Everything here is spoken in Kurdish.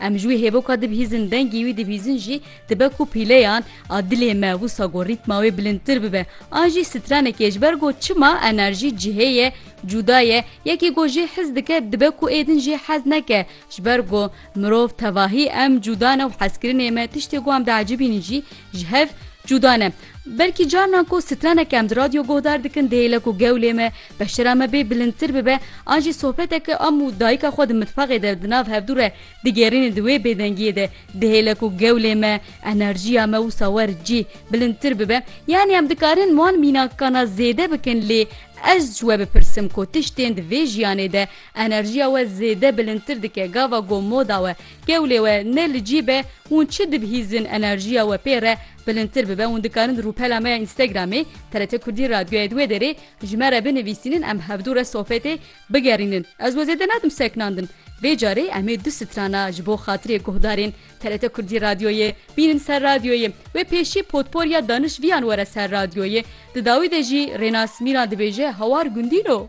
Em ji wî hêvoka dibihîzin, dengê wî dibihîzin jî dibe ku pîleyan a dilê me wisa ku rîtma wê bilindtir bibe. A jî stranekê ji ber ku çima enerjî cihê ye, cuda ye, yekê ku jê hez dike dibe ku êdin jê hez neke. Ji ber ku mirov tevahî em cuda ne û hezkirinê me tiştê ku em diecibînin jî ji hev cuda ne. Belkî carinan ku stranek em di radyo guhdar dikin dihêle ku gewlê me Beşira me bê bilindtir bibe an jî sohbeteke am û dayika xwe di mitbaxê de di nav hevdû re digêrînin di wê bêdengiyê de dihêle ku gewlê me, enerjiya me wisa wer cî bilindtir bibe. Yanî em dikarin wan mînakana zêde bikin lê ez ji we bipirsim ku tiştên di vê jiyanê de enerjiya we zêde bilindtir dike gava ku moda we, gewlê we ne li cî be hûn çi dibihîzin enerjiya we pê re bilindtir bibe hûn dikarin di rûpela me ya Instagramê, TRT Kurdî Radyoyê di wê derê Ji me re binivîsînin em hevdu re sohbetê bigerînin. Ez we zêde nadim seknandin. Vê carê em ê du strana ji bo xatirê guhdarên TRT Kurdî Radyoyê bînin ser radyoyê. Wê pêşî potporya danişviyan were ser radyoyê. Di dawî de jî Rênas Mîran dibêje hawar gundîn o.